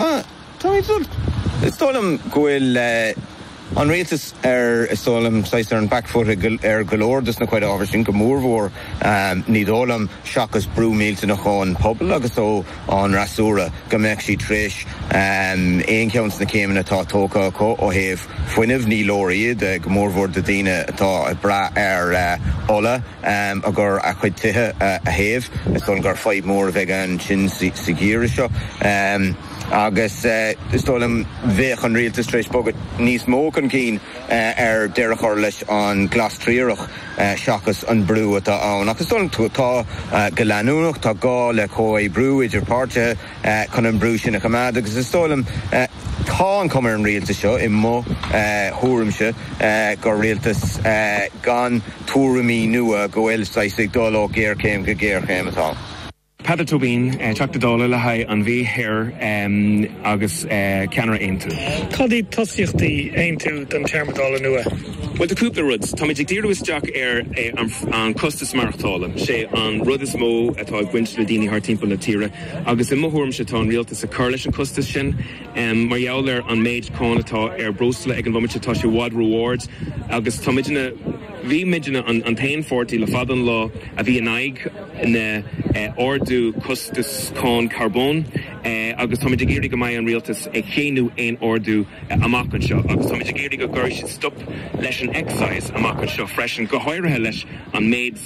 Is dóigh liom go bhfuil an rialtas ar an 'back foot' ar go leor dos na chuid ábhar sin, go mór mhór, ní dóigh liom, seachas brú millteanach ón bpobal agus ón fhreasúra, go mbeadh siad tar éis aon cheann de na céimeanna atá tógtha acu ó thaobh. fuinnimh. Ní leor iad, go mórmhór do dhaoine atá ag brath ar ola chun a gcuid tithe a théamh. Is dóigh liom gur fadhb mhór a bheidh ansin sa gheimhreadh seo agus is dóigh liom bheadh an rialtas tar éis bogadh níos mó chun cinn ar deireadh a chur leis an glas triarach seachas an brú atá ann. Ach is dóigh liom tá go leanúnach, tá gá le comhoibriú idir páirtithe. chun an brú sin a choimeád agus is dóigh liom, tá an chuma ar an rialtas seo, i mo thuairimse, gur rialtas gan tuairimí nua, go bhfuil saghas ag dul ó ghéarchéim go géarchéim. Tá Peadar Tóibín, Teachta Dála le haghaidh an Mhí Thiar agus ceannaire Aontú. Cad iad tosaíochtaí Aontú don téarma Dála nua? Bhuel, tá cúpla rud. Táimid ag díriú isteach ar an chostas maireachtála. Sé an rud is mó atá ag baint le daoine thart timpeall na tíre agus i mo thuairimse tá an rialtas ag cur leis an chostas sin. Mar gheall ar an méid cáin atá ar breosla ag an bhomaite tá sé i bhfad ró-ard agus tá muidne, bhí muidne an t-aon pháirtí le fada an lá a bhí in aghaidh na ardú costas cáin carbóin. agus táimid ag iarraidh go mbeidh an rialtas ag séanadh aon ardú amach anseo, agus táimid ag iarraidh go gcuirfidh siad stop leis an excise amach anseo freisin, go háirithe leis an méid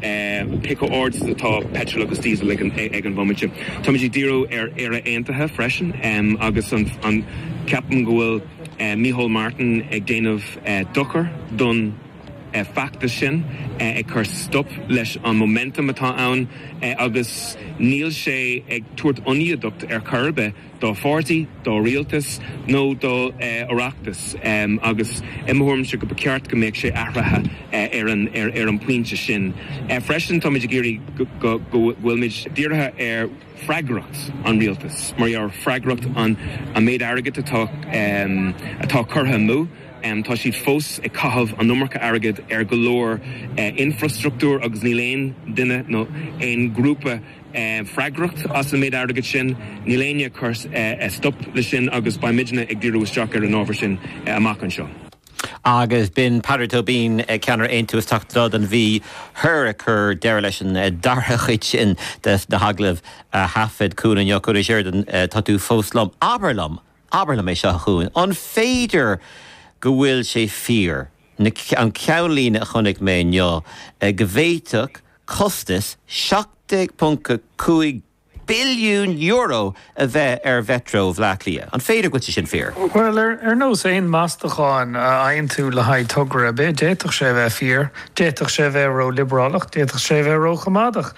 cé chomh ard is atá peitreal agus diesel ag an bhomaite. Táimid ag díriú ar Éire Aontaithe freisin, agus ceapaim go bhfuil Micheál Martin ag déanamh dochar don. feachtas sin, ag cur stop leis an momentum atá ann agus níl sé ag tabhairt ionadaíocht ar chor ar bith do pháirtí, do rialtas nó do Oireachtas agus i mo thuairimse go ba cheart go mbeadh sé athraithe ar an bpointe sin. Freisin, táimid ag iarraidh go bhfuilmid dírithe ar. freagracht an rialtas, mar gheall freagracht an méid airgid atá curtha amú. Tá siad fós ag caitheamh an iomarca airgid ar go leor infreastruchtúr agus níl aon duine nó aon ghrúpa freagracht as an méid airgid sin. Níl éinne ag cur stop leis sin agus beidh muidne ag díriú isteach ar an ábhar sin amach anseo. Agus b'in Peadar Tóibín, ceannaire Aontú, is Teachta Dála don Mhí Thiar ag cur deireadh leis an dara chuid sin de na hagallaimh a thaifead Cuan inniu. A Chuain Uí Sheireadáin, tá tú fós liom. Abair liom, abair liom é seo, a Chuain, an féidir go bhfuil sé fíor, an ceannlíne a chonaic mé inniu, go bhféadfadh costas 17.5 billiún euro a bheith ar Mhetro Bhleá Cliath. An féidir go bhfuil sé sin fíor? Bhuel, ar nós aon mheastachán a fhaigheann tú le haghaidh togra ar bith, d'fhéadfadh sé a bheith fíor, d'fhéadfadh sé a bheith ró-liobrálach, d'fhéadfadh sé a bheith ró-choimeádach.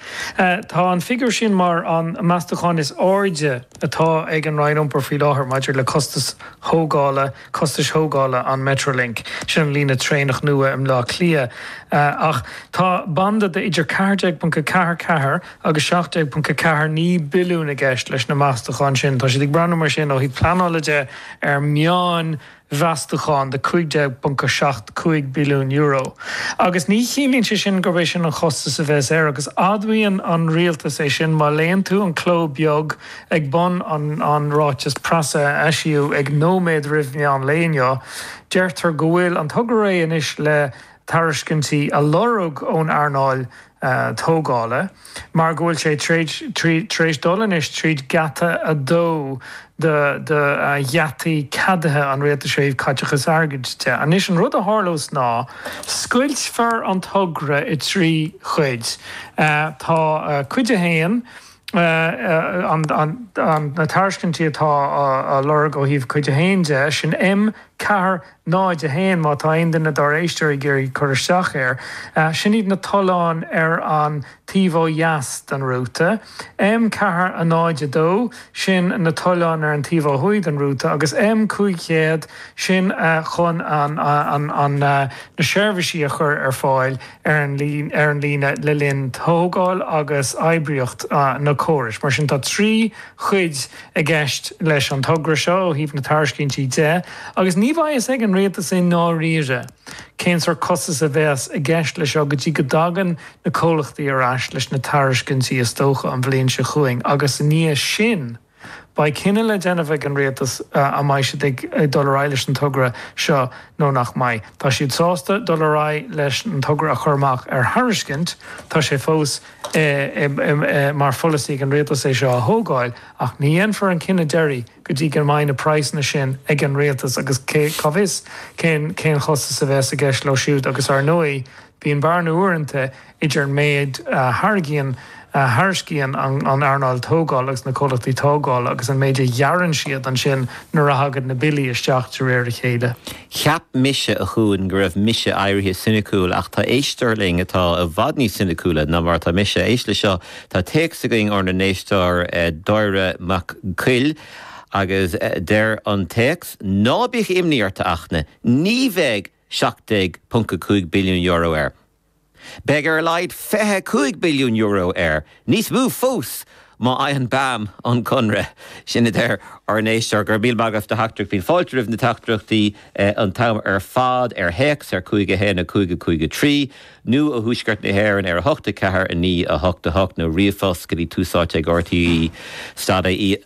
Tá an figiúr sin mar an meastachán is airde atá ag an Roinn Iompair faoi láthair maidir le costais thógála, costais thógála an Metrolink, sin an líne traenach nua i mBleá Cliath, ach tá banda de idir 14.44 agus 17.49 billiún i gceist leis na meastacháin sin. Tá siad ag breathnú mar sin, ó thaobh pleanála de, ar meánmheastachán de €15.75 billiún, agus ní chiallaíonn sé sin gurb é sin an chostas a bheas air, agus admhaíonn an rialtas é sin, má léann tú an cló beag, Ag bun an ráiteas preasa a eisíodh ag nóiméad roimh mheán lae inniu, deirtear go bhfuil an togra réidh anois le tairiscintí a lorg ón earnáil tógála mar go bhfuil sé tar éis dul anois tríd geata a dó de gheataí ceadaithe an Rialtais ó thaobh caiteachais airgid de. Anois an rud a tharlós ná scoiltfear an togra i dtrí chuid. Tá Cuid 1, na tairiscintí atá á lorg ó thaobh Cuid 1 de, sin M, ceathair, náid, a haon, má tá aon duine dár éisteoirí ag iarraidh cur isteach air. Sin iad na tolláin ar an taobh ó dheas den rúta. M, ceathair, náid, a dó, sin na tolláin ar an taobh ó thuaidh den rúta, agus M, cúig chéad, sin chun na seirbhísí a chur ar fáil. ar an líne le linn tógáil agus oibríocht na córais. Mar sin, tá trí chuid i gceist leis an togra seo ó thaobh na tairiscintí de, agus ní bheidh fhios ag an rialtas i ndáiríre cén sórt costas a bheas i gceist leis seo go dtí go dtagann na comhlachtaí ar ais leis na tairiscintí, is dócha an bhliain seo chugainn agus i ndiaidh sin. Beidh cinneadh le déanamh ag an rialtas an mbeidh siad ag dul ar aghaidh leis an togra seo nó nach mbeidh. Tá siad sásta dul ar aghaidh leis an togra a chur amach ar thairiscint, tá sé fós mar pholasaí ag an rialtas é seo a thógáil, ach ní dhéanfar an cinneadh deiridh go dtí go mbeidh na praghsanna sin ag an rialtas agus cá bhfios cén costas a bheas i gceist leo siúd agus, ar ndóigh, Bíonn bearna uaireanta idir an méid a thairgíonn, a thairiscíonn, an earnáil tógála agus na comhlachtaí tógála agus an méid a ghearrann siad ansin nuair a thagann na billí isteach de réir a chéile. Cheap mise, a Chuain, go raibh mise éirithe soiniciúil ach tá éisteoir linn atá i bhfad níos soiniciúla ná mar atá mise. Éist leis seo, tá téacs againn ónár n-éisteoir Dáire Mac Coille agus deir an téacs, 'Ná bíodh imní ort, a Fhachtna, ní bheidh. €17.5 billiún air. Beidh ar a laghad €25 billiún air, níos mó fós má fhaigheann BAM an conradh. Sin a deir ár n-éisteoir. Go raibh míle maith agat as do theachtaireacht. Bíonn fáilte roimh na teachtaireachtaí an t-am ar fad, ar théacs ar 51553, nó ó thuaisceart na hÉireann ar 8 4 9 8 8, nó ríomhphost go dtí tusaite ag rte stad ie.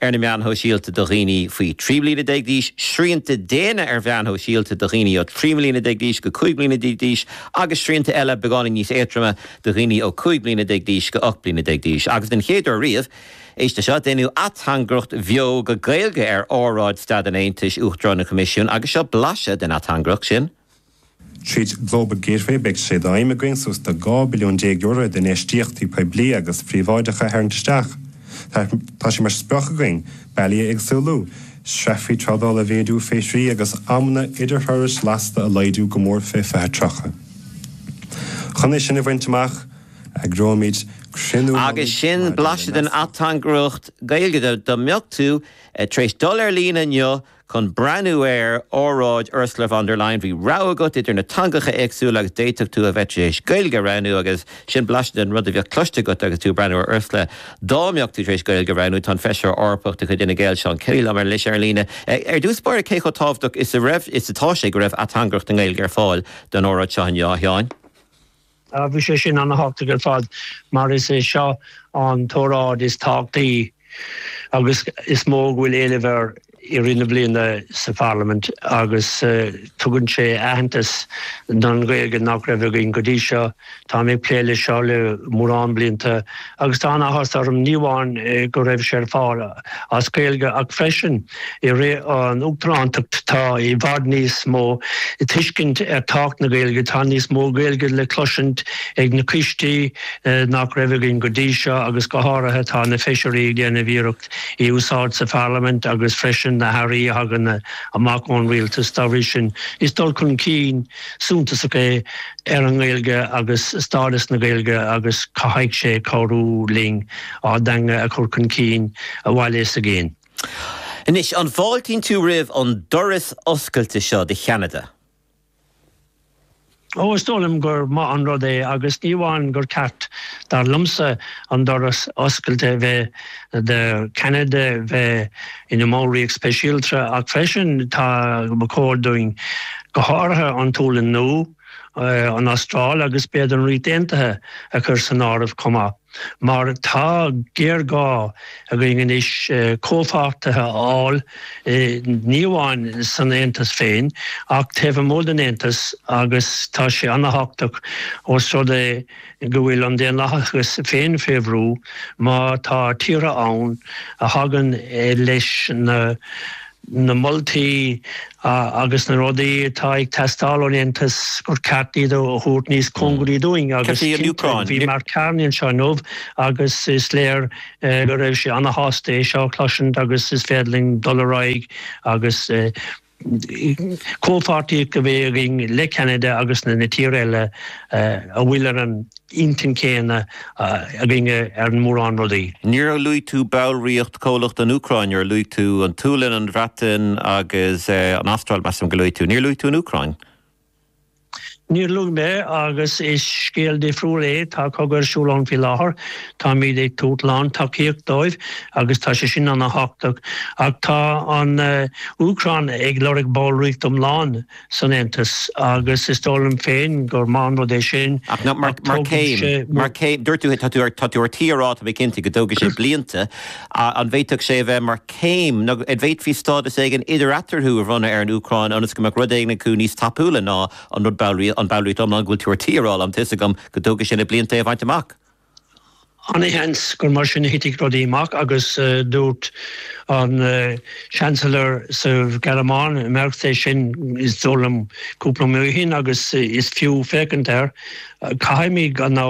ar na meáin shóisialta do dhaoine faoi 13 bliana d'aois, srianta déine ar mheáin shóisialta do dhaoine ó 3 mbliana déag d'aois go 15 bliana d'aois agus srianta eile beagáinín níos éadroime do dhaoine ó 15 bliana d'aois go 18 bliana d'aois. Agus den chéad uair riamh, éist le seo, déanadh ateangaireacht bheo go Gaeilge ar óráid Staid an Aontais Uachtarán an Choimisiúin agus seo blaiseadh den ateangaireacht sin. Tríd Global Gateway beidh sé d'aidhm againn suas le €12 billiún d'infheistíochtaí poiblí agus príobháideacha a tharraingt isteach. Tá sé mar sprioc againn bealaí a éagsúlú, sreafaí trádála a mhéadú, fiche trí agus amanna idirthurais lasta a laghdú go mór faoi 2030. Chun é sin a bhaint amach, eagróimid cruinniú agus sin blaiseadh den ateangaireacht Gaeilge dá mbeadh tú tar éis dul ar líne inniu. Chun breathnú ar óráid Ursula von der Leyen, bhí rogha agat idir na teangacha éagsúla agus d'fhéadfadh tú a bheith tar éis Gaeilge a roghnú agus sin blaiseadh den rud a bheadh cloiste agat agus tú ag breathnú ar Ursula. Dá mbeadh tú tar éis Gaeilge a roghnú, tá an Feisire Eorpach de chuid Fhine Gael, Seán Kelly liom ar ais ar líne. Ar dtús báire, cé chomh tábhachtach is a raibh is atá sé go raibh ateangaireacht i nGaeilge ar fáil don óráid seo inniu, a Sheáin? Bhí sé sin an-thábhachtach ar fad mar is é seo an t-óráid is tábhachtaí agus is mó go bhfuil éileamh air i rith na bliana sa Pharlaimint agus tugann sé aitheantas don Ghaeilge nach raibh againn go dtí seo. Táim ag plé leis seo le mórán blianta agus tá an-áthas orm ní amháin go raibh sé ar fáil, as Gaeilge ach freisin i rith an Uachtarántacht tá i bhfad níos mó tuiscint ar tábhacht na Gaeilge, tá níos mó Gaeilge le cloisint ag na coistí nach raibh againn go dtí seo agus go háirithe tá na feisirí ag déanamh iarracht í a úsáid sa Pharlaimint agus freisin na hairí a thagann amach ón Rialtas, dá bhrí sin is dul chun cinn. suntasach é ar an nGaeilge agus stádas na Gaeilge agus caithfidh sé cabhrú linn ár dteanga a chur chun cinn sa bhaile is i gcéin. Anois, an bhfáiltíonn tú roimh an doras oscailte seo do Cheanada? Ó, is dóigh liom gur maith an rud é agus ní amháin gur cheart, dar liomsa, an doras oscailte bheith do Cheanada bheith, ina mballraíocht speisialta, ach freisin ba chóir dúinn, go háirithe an tSéalainn Nua, an Astráil agus b'fhéidir an Ríocht Aontaithe a chur san áireamh chomh maith, mar tá géarghá againn anois comhpháirtithe a fháil ní amháin san Aontas féin ach taobh amuigh den Aontas agus tá sé an-thábhachtach ós rud é go bhfuil an daonlathas féin fé bhrú má tá tíortha ann a thagann leis na moltaí agus na rudaí atá ag teastáil ón Aontas gur ceart iad a thabhairt níos cóngaraí dúinn agus cinnte bhí Mark Carney anseo inniu agus is léir go raibh sé ana-shásta é seo a chloisint agus is féidir linn dul ar aghaidh agus Comhpháirtíocht a bheith againne le Ceanada agus na na tíortha eile a bhfuil ar an intinn chéanna againne ar mhórán rudaí. Níor luaigh tú ballraíocht chomhlach an Úcráin, mar luaigh tú an tSualainn, an Bhreatain agus an Astráil, measaim gur luaigh tú. Níor luaigh tú an Úcráin. Níor luaigh mé, agus is scéal difriúil é, tá cogadh ar siúl ann faoi láthair, táimid ag tabhairt lán tacaíocht dóibh agus tá sé sin ana-thábhachtach. Ach tá an Úcráin ag lorg ballraíocht iomlán san Aontas agus is dóigh liom féin gur maith an rud é sin. Ach mar chéim, mar chéim, dúirt tú, tá tú ar tí a rá, tá mé cinnte, go dtógfaidh sé blianta, An bhféadfadh sé a bheith mar chéim? Nó an bhféadfaí stádas éigin idir-eatarthu a bhronnadh ar an Úcráin ionas go mbeadh rud éigin acu níos tapúla ná an rud ballraíocht, an ballraíocht iomlán go bhfuil tú ar tí a rá liom, tá 'fhios agam go dtógfaidh sé na blianta é a bhaint amach? Ana-sheans gur mar sin a thitfidh rudaí amach agus dúirt an Chancellor sa Ghearmáin, Merz, é sin is dóigh liom cúpla mí ó shin agus is fiú féachaint air. Caithfimid an.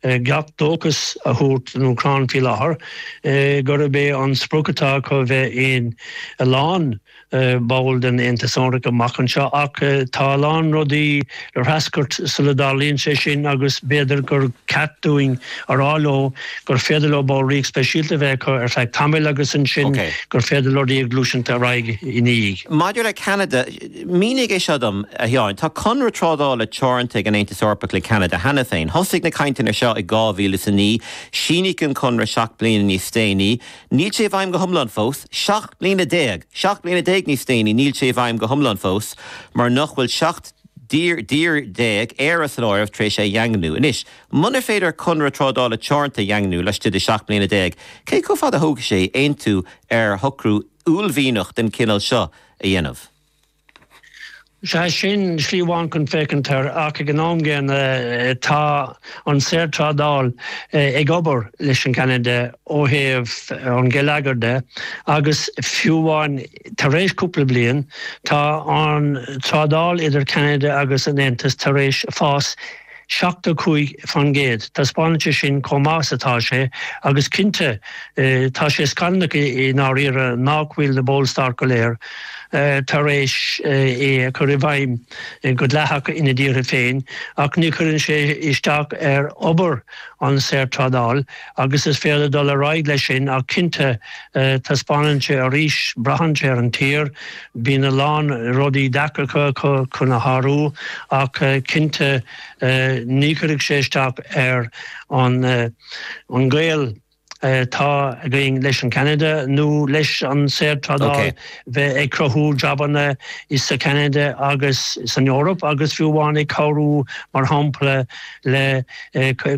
gach dóchas a thabhairt don Úcráin faoi láthair gurb é an sprioc atá acu bheith ina lánbhall den Aontas Eorpach amach anseo. Ach tá a lán rudaí le heascairt sula dtarlaíonn sé sin agus b'fhéidir gur ceart dúinn a rá leo gur féidir leo ballraíocht speisialta a bheith acu ar feadh tamaill agus ansin gur féidir leo gluaiseacht ar aghaidh ina dhiaidh. Maidir le Ceanada, Mínigh é seo dom, a Sheáin. Tá conradh trádála teoranta ag an Aontas Eorpach le Ceanada cheana féin. Thosaigh na cainteanna seo i 2009. Síníodh an conradh seacht mbliana níos déanaí. Níl sé i bhfeidhm go hiomlán fós. Seacht mbliana déag! Seacht mbliana déag níos déanaí, níl sé i bhfeidhm go hiomlán fós, mar nach bhfuil seacht dtír déag, Éire san áireamh, tar éis é a dhaingniú. Anois, munar féidir conradh trádála teoranta a dhaingniú laistigh de sheacht mbliana déag, cé chomh fada a thógfaidh sé aontú ar shocrú uaillmhianach den chineál seo? a dhéanamh. Sea, sin slí amháin chun féachaint air, ach ag an am gcéanna, tá an saorthrádáil ag obair leis an gCeanada ó thaobh an gheilleagair de, agus fiú amháin tar éis cúpla bliain, tá an trádáil idir Ceanada agus an tAontas tar éis fás 75%. Taispeánann sé sin chomh maith is atá sé, agus cinnte tá sé scannalach i ndáiríre nach bhfuil na ballstáit go léir tar éis é a chur i bhfeidhm go dleathach ina dtíortha féin, ach ní chuireann sé isteach ar obair an saorthrádáil Agus is féidir dul ar aghaidh leis sin, ach cinnte, taispeánann sé arís, braitheann sé ar an tír, bíonn a lán rudaí deacra acu chun é a shárú, ach cinnte ní chuirfidh sé isteach ar an gaol atá againn leis an Ceanada nó leis an saorthrádáil bheith ag cruthú jabanna sa Cheanada agus san Eoraip agus fiú amháin ag cabhrú, mar shampla, le,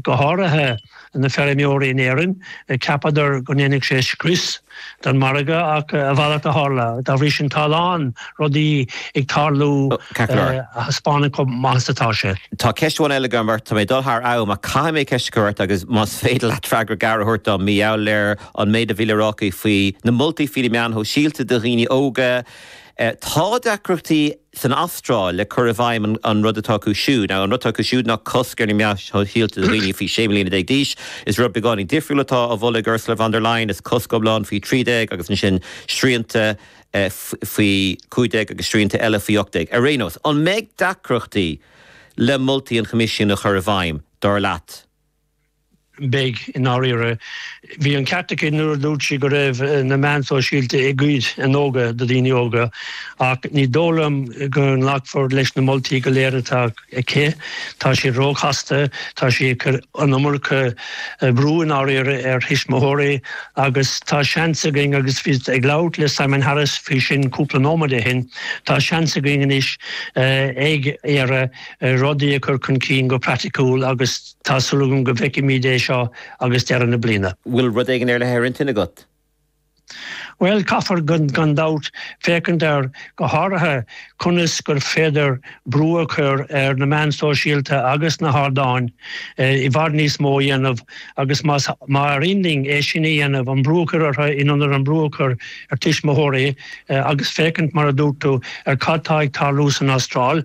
go háirithe. na feirmeoirí in Éirinn, ceapadar go ndéanfadh sé scrios don mhargadh ach a mhalairt a tharla. Dá bhrí san, tá a lán rudaí ag tarlú a thaispeánann chomh maith is atá sé. Tá ceist amháin eile agam ort. Tá mé ag dul thar am ach caithfidh mé ceist a chur ort agus más féidir leat freagra gearr a thabhairt dom, mar gheall ar an méid a bhí le rá aici faoi na moltaí faoi na meáin shóisialta do dhaoine óga, tá deacrachtaí san Astráil le cur i bhfeidhm an rud atá acu siúd. Ná, an rud atá acu siúd ná cosc ar na meáin shóisialta do dhaoine faoi 16 mbliana d'aois. Is rud beagáinín difriúil atá á mholadh ag Ursula von der Leyen, is cosc iomlán faoi 13 agus ansin srianta faoi 15 agus srianta eile faoi 18. Ar aon nós, an mbeidh deacrachtaí le moltaí an Choimisiúin a chur i bhfeidhm, dar leat? Beidh, i ndáiríre. Bhí an ceart aici nuair a dúirt sí go raibh na meáin shóisialta ag goid an óige ó dhaoine óga, ach ní dóigh liom go nglacfar leis na moltaí go léir atá aici. Tá siad róchasta, tá sí ag cur an iomarca brú, i ndáiríre, ar thuismitheoirí, agus tá seans againn, agus bhíos ag labhairt le Simon Harris faoi sin cúpla nóiméad ó shin, tá seans againn anois in Éire rudaí a chur chun cinn go praiticiúil agus. Tá súil agam go bhfeicfimíd é idir seo agus deireadh na bliana. Bhfuil rud éigin ar leith ar intinn agat? Bhuel, caithfear, gan dabht, féachaint ar, go háirithe, conas gur féidir brú a chur ar na meáin sóisialta agus na hardáin i bhfad níos mó a dhéanamh agus más féidir linn é sin a dhéanamh, an brú a chur orthu in ionad an brú a chur ar tuismitheoirí agus féachaint, mar a dúirt tú, ar cad tá ag tarlú san Astráil.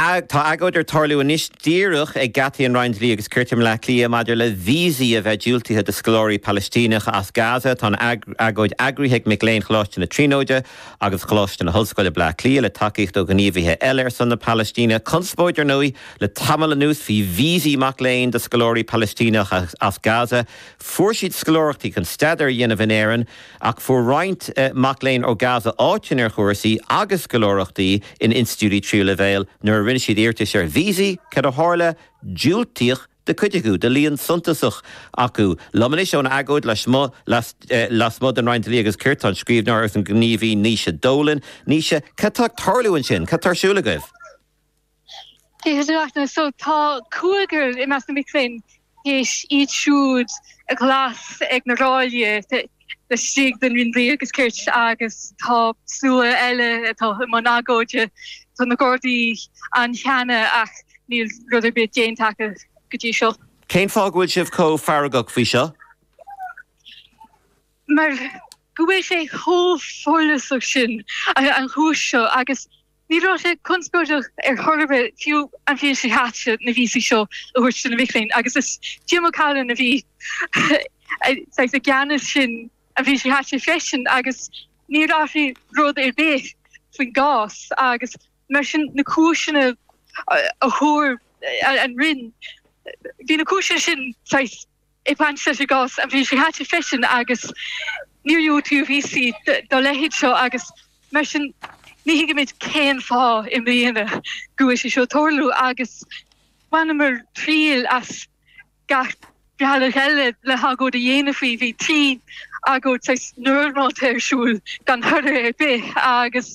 Tá agóid ag tarlú anois díreach ag geataí an Roinn Dlí agus Cirt i mBleá Cliath maidir le víosaí a bheith diúltaithe do scoláirí Palaistíneacha as Gaza. Tá an agóid eagraithe ag mic léinn Choláiste na Tríonóide agus Choláiste na hOllscoile, Bleá Cliath, le tacaíocht ó ghníomhaithe eile ar son na Palaistíne. Conspóid, ar ndóigh, le tamall anuas faoi víosaí mac léinn do scoláirí Palaistíneacha as Gaza. Fuair siad scoláireachtaí chun staidéar a dhéanamh in Éirinn. Ach fuair roinnt mac léinn ó Gaza áiteanna ar chúrsaí agus scoláireachtaí in institiúidí tríú leibhéil nuair a rinne siad iarratais ar víosaí, cad a tharla? Diúltaíodh do chuid acu, do líon suntasach acu. Liom anois ón agóid lasmuigh den Roinn Dlí agus Cirt tá an scríbhneoir agus an gníomhaí Naoise Dolan. Naoise, cad tá ag tarlú ansin? Cad tá ar siúl agaibh? So tá cúigear i measc na mic léinn théis iad féin a ghlasáil ag na ráillí laistigh den Roinn Dlí agus Cirt agus tá slua eile againn i mbun agóide. Tá na Gardaí ann cheana ach níl rud ar bith déanta acu go dtí seo. Cén fáth go bhfuil sibh chomh feargach faoi seo? Mar go bhfuil sé chomh follasach sin an chúis seo agus. Ní raibh sé conspóideach ar chor ar bith fiú an bhliain seo caite na víosaí seo a thabhairt do na mic léinn, agus is Jim O'Callaghan a bhí i gceannas an bhliain seo caite freisin, agus níor athraigh rud ar bith faoin gcás, agus mar sin na cúiseanna a thug an Roinn, bhí na cúiseanna sin saghas. i bhfeidhm sa gcás an bhliain seo caite freisin agus níor diúltaíodh víosaí dá leithéid seo agus mar sin ní thuigimid cén fáth i mbliana go bhfuil sé seo ag tarlú agus bhaineamar triail as gach bealach eile le hagóid a dhéanamh faoi, bhí trí agóid saghas normálta ar siúl gan toradh ar bith agus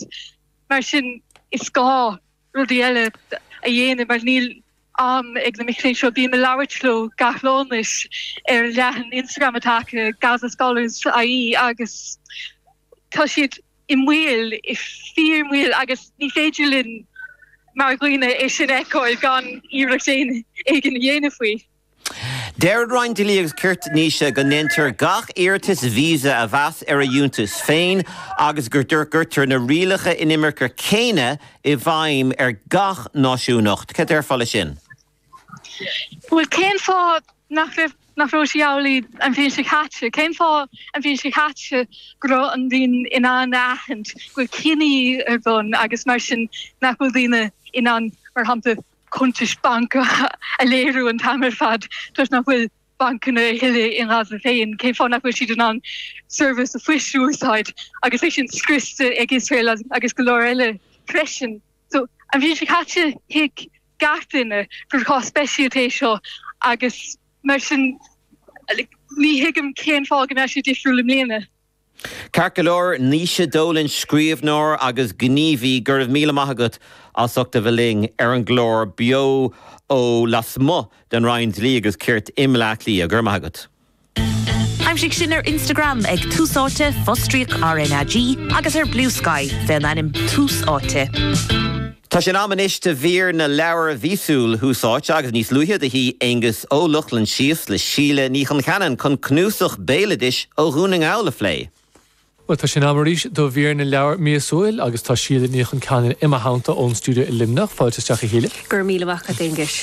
mar sin is gá. rudaí eile a dhéanamh mar níl am ag na mic léinn seo. Bím ag labhairt leo gach lá anois ar leathanach Instagram atá acu, Gaza Scholars IE, agus tá siad i mbaol, i fíor-mbaol, agus ní féidir linn mar dhaoine é sin a fheiceáil gan iarracht éigin a dhéanamh faoi. Deir an Roinn Dlí agus Cirt, Naoise, go ndéantar gach iarratas visa a mheas ar a fhiúntas féin agus go gcuirtear na rialacha inimirce céanna i bhfeidhm ar gach náisiúnacht. Cad déarfá leis sin? Bhuel, cén fáth nach raibh, nach raibh sé amhlaidh an bhliain seo caite? Cén fáth an bhliain seo caite go raibh an Roinn in ann a aithint go bhfuil cinedhíothú ar bun agus mar sin nach bhfuil daoine in ann, mar shampla, cuntais bainc a léiriú an t-am ar fad toisc nach bhfuil bancanna a thuilleadh i nGaza féin, cén fáth nach bhfuil siad in ann seirbhís phoist a úsáid agus é sin scriosta ag Iosrael agus go leor eile freisin. So an bhliain seo caite thuig gach duine gur cás speisialta é seo agus mar sin ní thuigim cén fáth go mbeadh sé difriúil i mbliana. Ceart go leor, Naoise Dolan, scríobhneoir agus gníomhaí, go raibh míle maith agat as ucht a bheith linn ar an gclár beo ó lasmuigh den Roinn Dlí agus Cirt i mBleá Cliath. Go raibh maith agat. Aimsigh sinn ar Instagram ag Tús Áite, fostríoc RnaG, agus ar Bluesky, fén ainm Tús Áite. Tá sé in am anois de mhír na leabhar mhíosúil Thús Áite agus níos luaithe do shuigh Aonghus Ó Lochlainn síos le Síle Ní Choncheanainn chun cnuasach béaloidis ó Dhún na nGall a phlé. Bhuel, tá sé in am arís do mhír na leabhar míosúil agus tá Síle Ní Choncheanainn i mo theannta ón stiúideo i Luimneach. Fáilte isteach, a Shíle. Go raibh míle maith agat, Aonghus.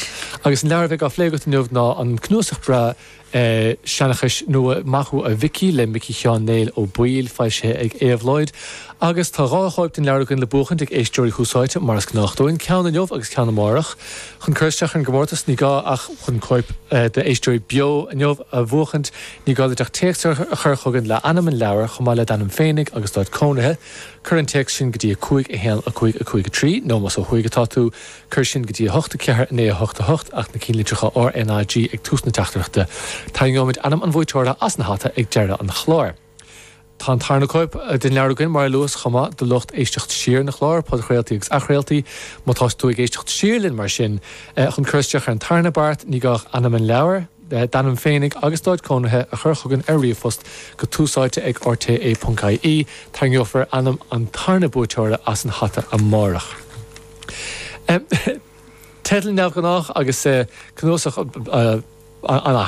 Agus an leabhar a bheidh á phlé agat inniu ná an cnuasach breá seanchais nua, Maith thú a Mhicí, le Micí Sheáin Néill Ó Baoill, foilsithe ag Éabhlóid. Agus tá dhá chóip den leabhar againn le buachaint ag éisteoirí Thús Áite, mar is gnách dúinn, ceann inniu agus ceann amárach. Chun cur isteach ar an gcomórtas, ní gá ach. Chun cóip d'Éisteoirí Beo inniu a bhuachaint, ní gá duit ach téacs a chur chugainn le hainm an leabhair, chomh maith le d'ainm féinig agus d'áit cónaithe. Cuir an téacs sin go dtí 5 1 5 5 3, nó más ó thuaidh atá tú, Cuir sin go dtí 8, 4, 9, 8, 8, ach na cinnlitreacha RNAG ag tús na teachtaireachta. Tarraingeoimid ainm an bhuaiteora as an hata ag deireadh an chláir. Tá an tarna cóip den leabhar againn, mar a luas, chomh maith, do lucht éisteacht siar an chláir, podchraoltaí agus athchraoltaí. Má tá tú ag éisteacht siar linn, mar sin, chun cur isteach ar an tarna beart, ní gá ach ainm an leabhair, d'ainm féinig agus d'áit cónaithe a chur chugainn ar ríomhphost go túsáite ag rte. ie. Tarraingeofar ainm an tarna buaiteora as an hata amárach. Teidil neamhghnách agus cnuasach an-ait.